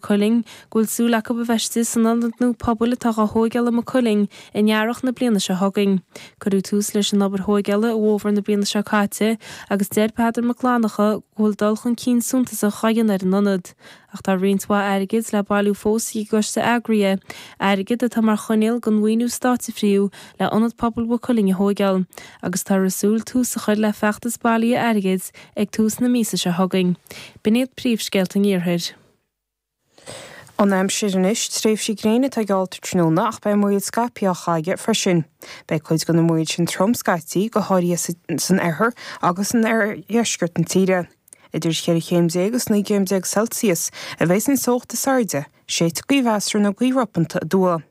Cuilinn, go bhfuil súil acu a bheith istigh san ionad nua pobail atá dhá thóigeáil i Maigh Cuilinn in earrach na bliana seo chugainn. Cuireadh tús leis an obair thóigeála i bhfómhar na bliana seo caite agus deir Peadar Mac Fhlannchadha go bhfuil dul chun cinn suntasach á dhéanamh ar an ionad ach tá roinnt mhaith airgid le bailiú fós ag an gcoiste eagraithe, airgead atá mar choinníoll don mhaoiniú stáit a frítheadh le Ionad Pobail Mhaigh Cuilinn a thóigeáil, agus táthar ag súil tús a chur le feachtas bailithe airgid ag tús na míosa seo chugainn. B'in iad príomhscéalta an iarthair. An aimsir anois, tréimhsí gréine atá geallta tráthnóna ach beidh múraíl scaipthe á chaitheamh aige freisin. Beidh cuid de na múir sin trom scaití, go háirithe san oirthear agus in oirdheisceart na tíre. Idir cheithre chéim déag is naoi gcéim déag Celsius a bheidh an teocht is airde, séidfidh gaoth mheasartha nó gaoth ropanta aduaidh.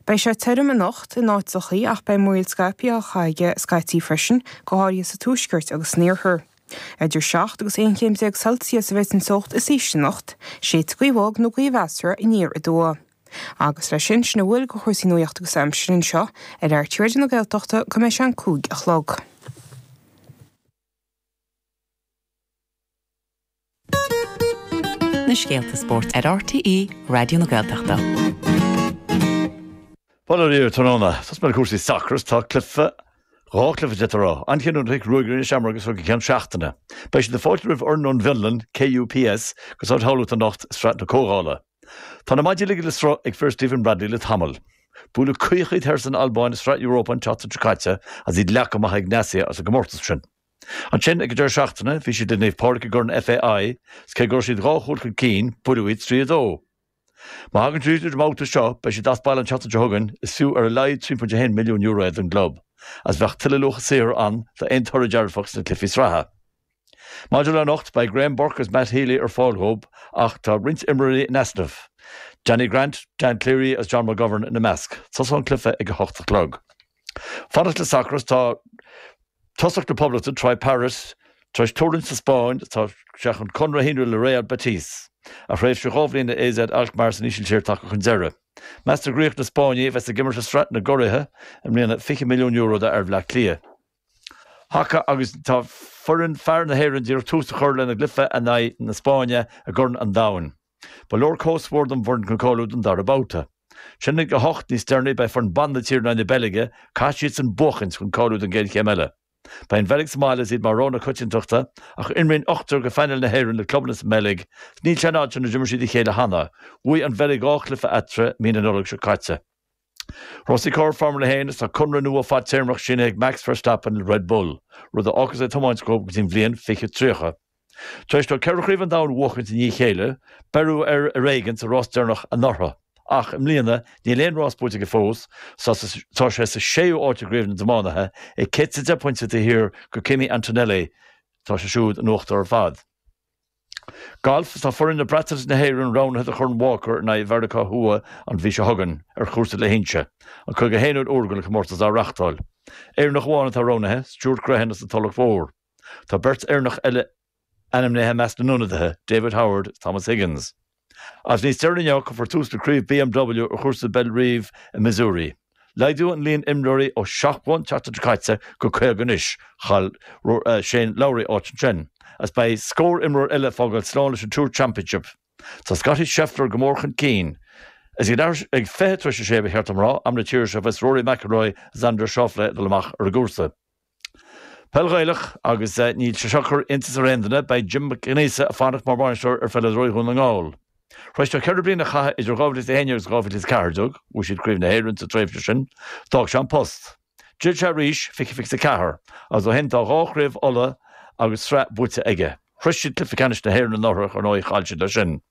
Beidh sé tirim anocht in áiteachaí ach beidh múraíl scaipthe á chaitheamh aige scaití freisin, go háirithe sa tuaisceart agus san iarthar. Idir seacht agus aon chéim déag Celsius a bheidh an teocht is ísle anocht, séidfidh gaoth bhog nó gaoth mheasartha aniar aduaidh. Agus leis sin, sin a bhfuil de chúrsaí nuachta agus aimsire anseo ar RTÉ Raidió na Gaeltachta go mbeidh sé an cúig a chlog. na scéalta spóirt ar RTÉ Raidió na Gaeltachta. Bail ó Dhia oraibh tráthnóna, tosóidh mé le cúrsaí sacair is tá cluife, dhá cluife déanta a rá, an-chinniúnach ag Ruagairí na Seamróige as seo go ceann seachtaine. Beidh siad ag fáiltiú roimh fhoireann ón bhFionlainn, KUPS, go Staid Thamhlachta anocht i Sraith na Comhdhála. Tá na maidí ligthe le sruth ag fir Stephen Bradley le tamall. Buaileadh caoch iad thoir san Albáin i Sraith Europa an tseachtain seo caite agus iad leagtha amach ag Egnatia as an gcomórtas sin. Ansin, ag an deireadh seachtaine, bhí siad le Naomh Pádraig i gCorn FAI agus cé go raibh siad dhá chúl chun cinn, buaileadh iad trí a dó. Má thagann siad tríd an mbabhta seo, beidh siad as baile an tseachtain seo chugainn, is fiú ar a laghad €3.1 milliún é don gclub, agus bheadh tuilleadh luacha saothair ann d'aon toradh dearfach sna cluichí sraithe. Maidir le anocht, beidh Graham Burke agus Matt Healy ar fáil dhóib ach tá roinnt imreoirí in easnamh, Danny Grant, Dan Cleary agus John McGovern ina measc. Tosóidh an cluiche ag a hocht a chlog. Fanacht le sacar is tá tosaí na Poblachta Troy Parrott tar éis tuirlingt sa Spáinn, tá sé chun conradh a shíniú le Real Betis, a thréimhse dhá bhliain le AZ Alkmaar san Ísiltír tagtha chun deiridh. Meastar go n-íocfaidh na Spáinnigh a bheas ag imirt i Sraith na gCuraidh i mbliana €20 milliún d'fhear Bhaile Átha Cliath. Haca agus tá foireann fear na hÉireann díreach ag tús a chur lena gcluiche in aghaidh na Spáinne i gCorn an Domhain. Ba leor comhscór don bhfoireann chun cáiliú don dara babhta. Ansin ag a hocht níos deireanaí beidh foireann ban na tíre in aghaidh na Beilge, caithfidh siad san buachaint chun cáiliú don gcéad chéim eile. Beidh an Bheilg sa mbaile is iad mar rogha na coitiantachta ach imríonn ochtar go phainéal na hÉireann le clubanna sa mBeilg is níl sé i bhfad an lá ó d'imir siad a chéile cheana. Bhuaigh an Bheilg dhá chluiche eatarthu mí na Nollag seo caite. Rásaí Carr, Formula 1, Is tá conradh nua fadtéarmach sínithe ag Max Verstappen le Red Bull, rud a fhágfas é ag tiomáint dóibh go dtí'n bhliain 2030. Tar éis dó ceithre chraobh an domhain a bhuachaint i ndiaidh a chéile, beireadh air ar éigean sa rás deireanach anuraidh. Ach i mbliana, níl aon rás buaite aige fós, tá sé sa séú áit i gcraobh na dtiománaithe, é céad is deich bpointe taobh thiar de Kimi Antonelli, tá sé siúd in uachtar ar fad. Galf, Tá foireann na Breataine is na hÉireann roghnaithe do Chorn Walker in aghaidh Mheiriceá Thuaidh an mhí seo chugainn ar chúrsa Leacht Uí Chonchubhair, an 51 uair don chomórtas á reáchtáil. Éireannach amháin atá roghnaithe, Stuart Grehan as an Tulach Mhór. Tá beirt Éireannach eile ainmnithe i measc na n-ionadaithe, David Howard is Thomas Higgins. Agus níos deireanaí inniu, cuirfear tús le craobh BMW ar chúrsa Bellerive i Missouri. Laghdaíodh an líon imreoirí ó seachtó an tseachtain seo caite go caoga anois. Chaill Shane Lowry áit ansin agus beidh scór imreoir eile ag fágáil slán leis an Tour Championship. Tá Scottie Scheffler go mór chun cinn. Is ag fiche tar éis a sé, ba cheart dom a rá, am na tíre seo, a bheas Rory McIlroy, Xander Schauffele ag dul amach ar an gcúrsa. Peil Ghaelach agus níl sé seo ag cur iontas ar aon duine, beidh Jim Mac Aonghusa ag fanacht mar bhainisteoir ar pheileadóirí Dhún na nGall. Tar éis dó ceithre bliana a chaitheamh idir 2011 agus 2014, bhuaigh siad Craobh na hÉireann sa tréimhse sin, d'fhág sé an post. D'fhill sé arís, 2024, agus ó shin tá dhá chraobh Uladh agus sraith buaite aige. Shroich siad cluiche ceannais na hÉireann anuraidh, ar ndóigh chaill siad leis sin.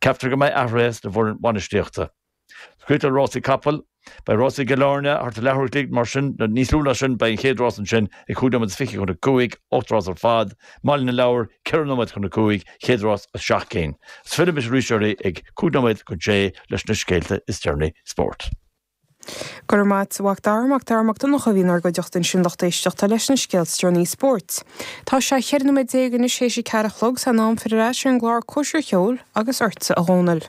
Ceaptar go mbeidh athruithe sa bhfoireann bhainistíochta. Scéalta Rásaí Capall. Beidh Rásaí Chill Airne thart ar leathuair an chloig, mar sin, nó níos lú ná sin. Beidh an chéad rás ansin ag cúig nóiméad is fiche chun a cúig, ocht rás ar fad. Baile an Lobhair, ceithre nóiméad chun a cúig, chéad rás as seacht gcinn. Is fillimis arís oraibh ag cúig nóiméad chun sé leis na scéalta is deireanaí spóirt. Go raibh maith agat, a Mhac Dara, Mac Dara Mac Donncha a bhí inár gcuideachta ansin lucht éisteachta leis na scéalta is deireanaí spóirt. Tá sé cheithre nóiméad déag anois théis a ceathair a chlog, is é an am filleadh ar ais ar an gclár Cóisir Cheoil agus ortsa, a Dhomhnaill.